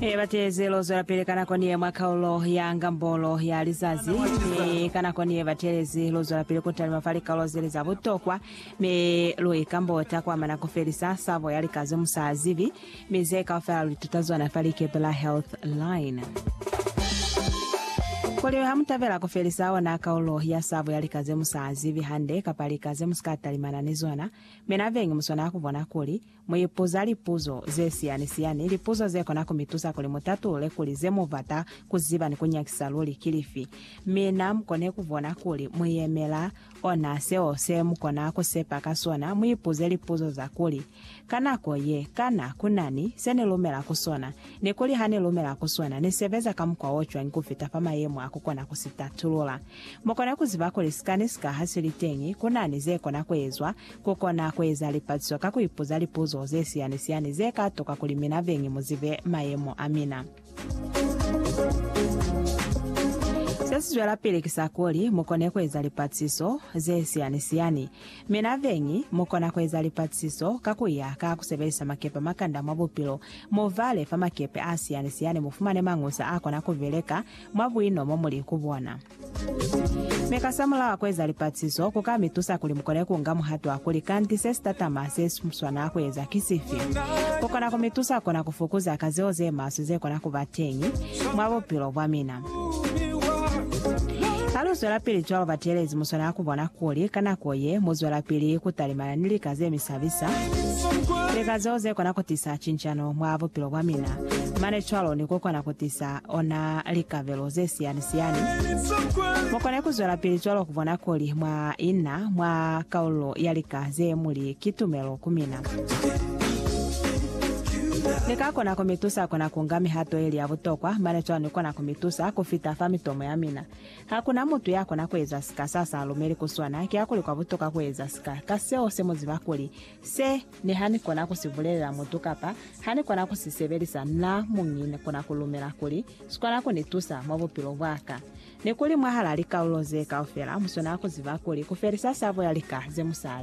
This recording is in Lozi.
E bateze lo zwelapili ka nako niye mwa kaulo ya ngambolo ya lizazi, mi ka nako niye batelezi lo zwelapili ku talima fa likaulo zeli za butokwa, mi lu ikambota kwa mana ku felisa sabo ya lika ze musa azibi, mi ze kaufela lu ituta zona fa likepe la Health Line. Kuli ha mu tabela ku felisa ona kaulo ya sabo ya lika ze musa azibi hande kapa lika ze musika talimana ni zona, mi na bengi mu swanela ku bona kuli Mu ipuza lipuzo ze siyani-siyani, lipuzo ze kona ku mi tusa kuli mu tatulule kuli ze mu bata ku ziba ni ku nyakisa luli ki lifi. Mi na mu kone ku bona kuli mu yemela ona seo se mu kona ku sepa ka sona. Mu ipuze lipuzo za kuli, Ka nako ye, kana ku na ni se ni lumela ku sona? Ni kuli, Ha ni lumela ku sona, ni sebeza ka mukwa o cwañi ku fita fa mayemo a ku kona ku si tatulula? Mu kone ku ziba kuli sikani sika ha si li teñi, ku na ni ze kona ku ezwa Ku kona ku eza lipatiso ka ku ipuza lipuzo ze siyani-siyani ze ka tuka kuli mina beñi mu zibe mayemo a mina. Se si zwelapili ki sa kuli mu kone ku eza lipatiso ze siyani-siyani. Mina beñi mu kona ku eza lipatiso ka ku ya ka ku sebelisa makepe a makanda mwa bupilo. Mu vale fa makepe a siyani-siyani mu fumane mañusa a kona ku beleka mwa buino mo mu li ku bona. Mi ka samulaho ku eza lipatiso ku ka mi tusa kuli mu kone ku nga muhato wa kuli, Kanti se si tatama se si swanela ku eza ki sifi? Ku kona ku mi tusa kona ku fukuza ka zeo ze maswe ze kona ku ba teñi mwa bupilo bwa mina. Ha lu zwelapili cwalo, bateelezi mu swanela ku bona kuli ka nako ye mu zwelapili ku talimana ni lika ze mi sabisa, lika zeo ze kona ku tisa cincano mwa bupilo bwa mina, mane cwalo ni ku kona ku tisa ona likabelo ze siyani-siyani. Mu kone ku zwelapili cwalo ku bona kuli mwa ina mwa kaululo ya lika ze mu li ki tumelo ku mina. Ni ka kona ku mi tusa ku na ku nga mihato ye li ya butokwa, mane cwalo ni kona ku mi tusa ku fita fa mitomo ya mina. Ha ku na mutu ya kona ku eza sika sa sa lumeli ku sona, kiakuli kwa butokwa ku eza sika ka seo se mu ziba kuli Se ne ha ni kona ku si bulelela mutu kapa ha ni kona ku si sebelisa na muñi ni kona ku lumela kuli si kona ku ni tusa mwa bupilo bwa ka. Ni kuli mwahal'a likalulo ze kaufela mu swanela ku ziba kuli ku felisa sabo ya lika ze mu sa